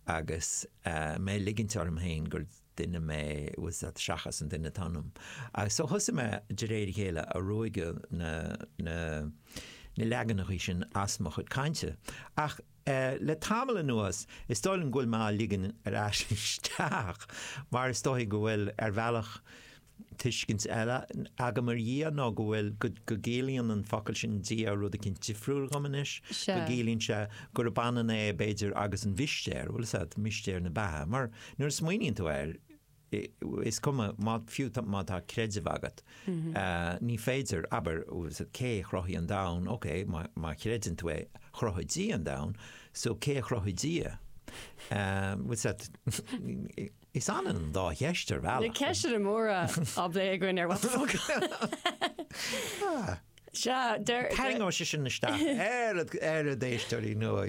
agus mé ag ligint orm féin gur duine mé falsa seachas an duine atá ionam. Agus so thosaigh mé de réir a chéile ag ruaigeadh na na na leaganachaí sin as mo chuid cainte. Ach eh le tamall anuas is dóigh liom go bhfuil mé á ligean ar ais isteach mar is dóigh go bhfuil ar bhealach Tuiscint eile agam ar Dhia nó go bhfuil, go gciallaíonn an focal sin Dia rud eicínt difriúil dhom anois. Go gciallaíonn sé gurb ionann é, b'fhéidir, agus an mhistéir, bhuel, is ea, mistéir na beatha. Mar nuair a smaoiníonn tú air, is cuma, fiú má tá creideamh agat, ní féidir, abair, cé a chruthaigh an domhan, ok, má chreideann tú é, chruthaigh Dia an domhan, so cé a chruthaigh Dia? Bhuel, is ea. Is ionann an dá cheist ar bhealach. Na ceisteanna móra á bplé againn ar What the Focus. Sea, deir. Tarraingeoidh sé sin isteach na héisteoirí nua.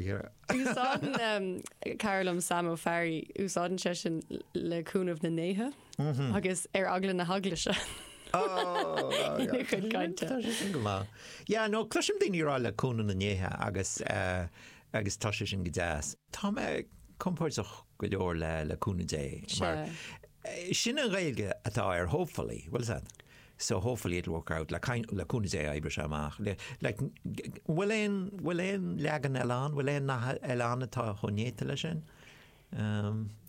Úsáideann cara liom Sam Ó Fearraigh, úsáideann sé sin le cúnamh na ndéithe agus ar eagla na heaglaise ina chuid cainte. Tá sé sin go maith. Yeah, no, cloisim daoine ag rá le cúnamh na ndéithe agus tá sé sin go deas. Tá mé compordach. go leor le le cúnamh Dé. Mar sin í an Ghaeilge atá ar hopefully, bhfuil a fhios agat? So hopefully it'll work out, le cúnamh Dé oibreoidh sé amach. Like an bhfuil aon an bhfuil aon leagan eile ann? An bhfuil aon nath eile ann atá chomh néata leis sin?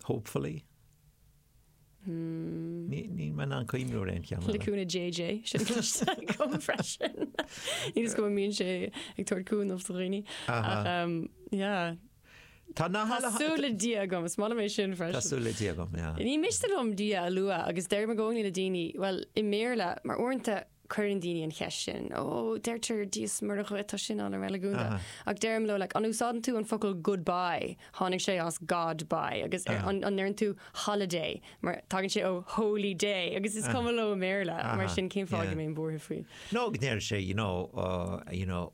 Hopefully. Níl mé in ann cuimhniú ar aon cheann eile. Le cúnamh JJ, sin cloiste agam freisin. Ní fios an mbíonn sé ag tabhairt cúnamh do dhaoine. Ach Tá na halla. Tá súil le Dia agam, is maith liom é sin freisin. Tá súil le Dia agam, yeah. Ní miste liom Dia a lua agus deirim i gcónaí le daoine, bhuel, i mBéarla, mar uaireanta cuireann daoine an cheist sin, ó deirtear Dia is Muire dhuit, tá sin an-reiligiúnda. Ach deirim leo, like, an úsáideann tú an focal goodbye, tháinig sé as God bye, agus an ndeireann tú holiday, mar tagann sé ó holy day, agus is cuma leo i mBéarla, mar sin cén fáth go mbeinn buartha faoi? Nó go ndeir sé, you know, uh, you know,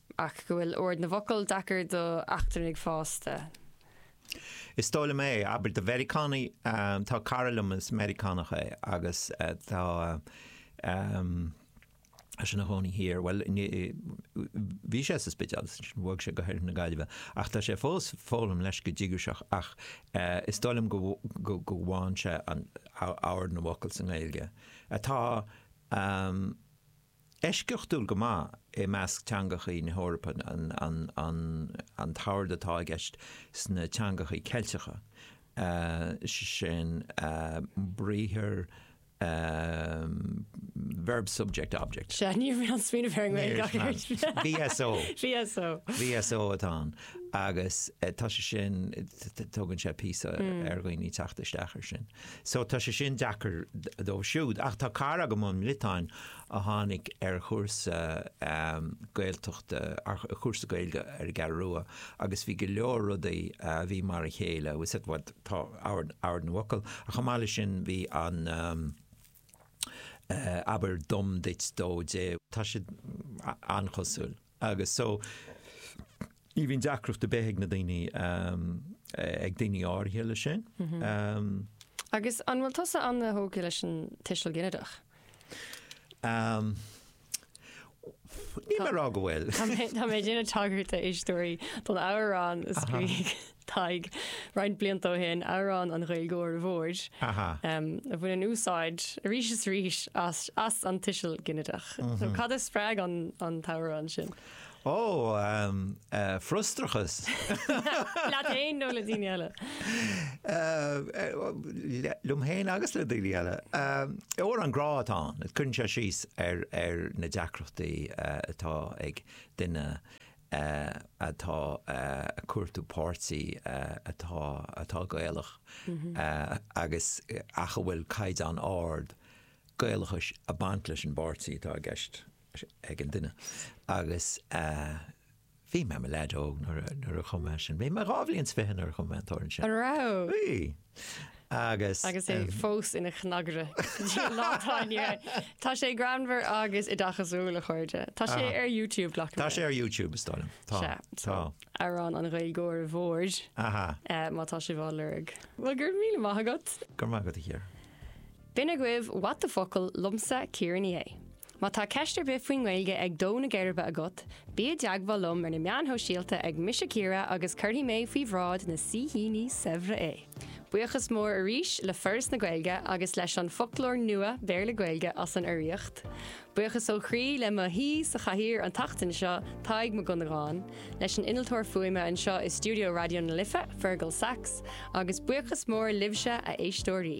ach go bhfuil ord na bhfocal deacair d'eachtrannaigh fásta. Is dóigh liom é, abair do Mheiriceánaigh. Tá cara liom is Meiriceánach é agus tá sé ina chónaí thiar, bhuel, bhí sé sa Spidéal agus ansin bhog sé go hOirthear na Gaillimhe, ach tá sé fós ag foghlaim leis go díograiseach ach is dóigh liom go bhfaigheann sé ord na bhfocal sa nGaeilge atá. eisceachtúil go maith i measc teangachaí na hEorpa an t-ord atá i gceist sna teangachaí Ceilteacha, sin briathar Verb-Subject-Object. VSO atá ann. Agus tá sé sin, tógann sé píosa ar dhaoine teacht isteach ar sin. So tá sé sin deacair dóibh siúd. Ach tá cara agam ón mBriotáin a tháinig ar chúrsa Gaeltachta, cúrsa Gaeilge ar an gCeathrú Rua agus bhí go leor rudaí a bhí mar a chéile, tá ord na bhfocal ach chomh maith leis sin bhí an abair dom duit dó di, tá siad an-chosúil. Agus so, ní bhíonn deacracht ar bith ag na daoine, ag daoine áirithe leis sin. Agus an bhfuil tusa an-tógtha leis an tuiseal ginideach? Níl mé ag rá go bhfuil. Tá mé ag déanamh tagairt a éisteoirí don amhrán a scríobh. Tadhg, roinnt blianta ó shin, Amhrán an Ghaeilgeora Mhóir, a bhaineann úsáid arís is arís as an tuiseal ginideach. Cad a spreag an t-amhrán sin? Ó, frustrachas. Leat fhéin nó le daoine eile? Liom fhéin agus le daoine eile. Amhrán grá atá ann, cuireann sé síos ar na deacrachtaí atá ag duine atá ag cuartú páirtí atá atá Gaelach agus ach a bhfuil caighdeán ard Gaelachais ag baint leis an bpáirtí atá i gceist ag an duine agus bhí mé i mo leaid óg nuair a nuair a chum mé sin. Bhí mé dhá bhliain 's fiche nuair a chum mé an t-amhrán sin. An raibh? Bhí. Agus. Agus é fós ina chnagaire go dtí an lá atá inniu ann. Tá sé greannmhar agus oideachasúil a chairde. Tá sé ar YouTube ghlac mé. Tá sé ar YouTube is dóigh liom. Tá. Sea, so, Tá. Amhrán an Ghaeilgeora Mhóir, Aha. eh, má tá sé á lorg. Bhuel, go raibh míle maith agat. Go raibh maith agat a Chiara. B'in agaibh What the Focal! liomsa, Ciara Ní É. Má tá ceist ar bith faoin nGaeilge ag dó na geirbe agat, bí i dteagmháil liom ar na meáin shóisialta ag Mise Ciara agus cuirfidh mé faoi bhráid na saoithíní saibhre é! Buíochas mór arís le Foras na Gaeilge agus leis an bhFoclóir Nua Béarla-Gaeilge as an urraíocht. Buíochas ó chroí le mo shaoi sa chathaoir an tseachtain seo, Tadhg Mac Dhonnagáin, leis an innealtóir fuaime anseo i stiúideo Raidió na Life, Fergal Saxe, agus buíochas mór libhse, a éisteoirí!